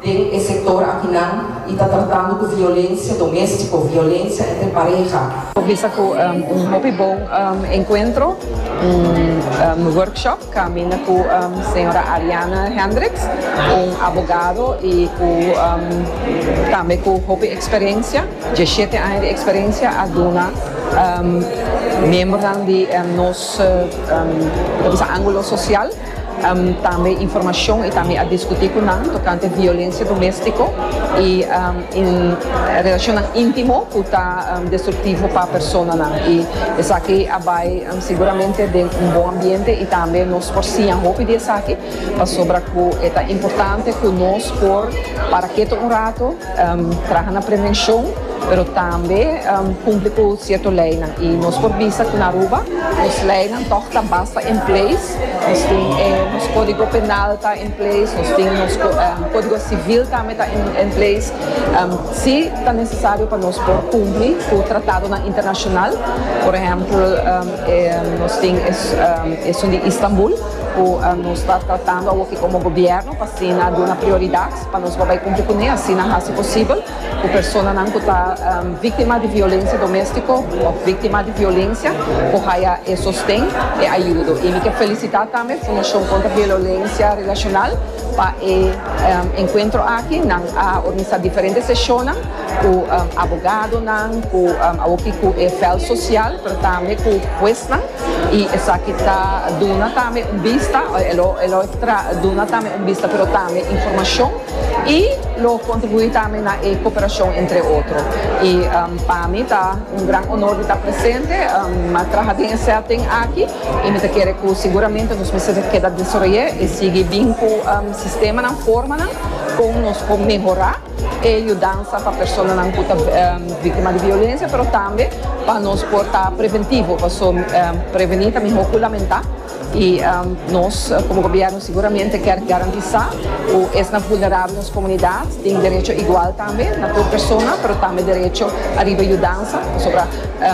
den e sektor akinan y ta tratando cu violencia domestico, violencia entre pareha. Bisa cu un hopi bon encuentro, un workshop caminda cu señora Ariana Hendricks, un abogado y cu tambe cu hopi experiencia, diecisiete aña di experiencia, a duna miembernan di nos, ta bisa angulo social. tambe informashon i tambe a diskutí ku nan tokante violensia doméstiko i relashonnan íntimo ku ta destruktivo pa personanan. I esaki a bai siguramente den un bon ambiente i tambe nos por siña hopi di esaki pasobra ku e ta importante ku nos por para ketu un rato, traha na prevenshon, pero tambe kumpli ku sierto leinan. I nos por bisa ku na Aruba nos leinan tòg ta basta en place. Nos tin e nos codigo penal ta in place, nos tin nos codigo civil tambe ta in place, si ta necesario pa nos por cumpli cu tratadonan internacional, por ehempel e nos tin esun di Istanbul cu nos ta tratando awoke como gobierno pa asina duna prioridad pa nos por bay cumpli cune, asina haci posibel. Ku personanan ku ta víktima di violensia doméstiko òf víktima di violensia por haya e sosten, e ayudo. I mi ke felisitá tambe Fundashon Kontra Violensia Relashonal pa e enkuentro aki. Nan a organisá diferente seshonnan ku abogadonan, ku awoki ku e vèlt sosial, pero tambe ku huesnan. I esaki ta duna tambe un bista, e lo e lo duna tambe un bista, pero tambe informashon y lo contribui tambe na e cooperacion entre otro y pa mi ta un gran honor di ta presente ma traha den e setting aki y mi ta kere cu seguramente nos mester ta keda desoroye y sigui bin cu sistemanan formanan con nos por mehora e yudansa pa personanan cu ta victima di violencia pero tambe pa nos por ta preventivo pasobra preveni ta mihor cu lamenta. I nos komo gobièrnu siguramente kier garantisá ku esnan vulnerabel nos komunidat tin derecho igual tambe na tur persona, pero tambe derecho ariba yudansa. Pasobra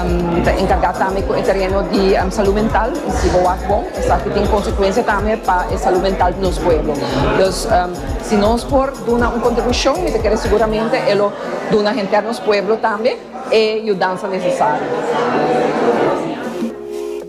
mi ta enkargá tambe ku e tereno di salú mental i si bo wak bon esaki tin konsekuensia tambe pa e salú mental di nos pueblo. Dus si nos por duna un kontribushon mi ta kere siguramente e lo duna henter nos pueblo tambe e yudansa nesesario.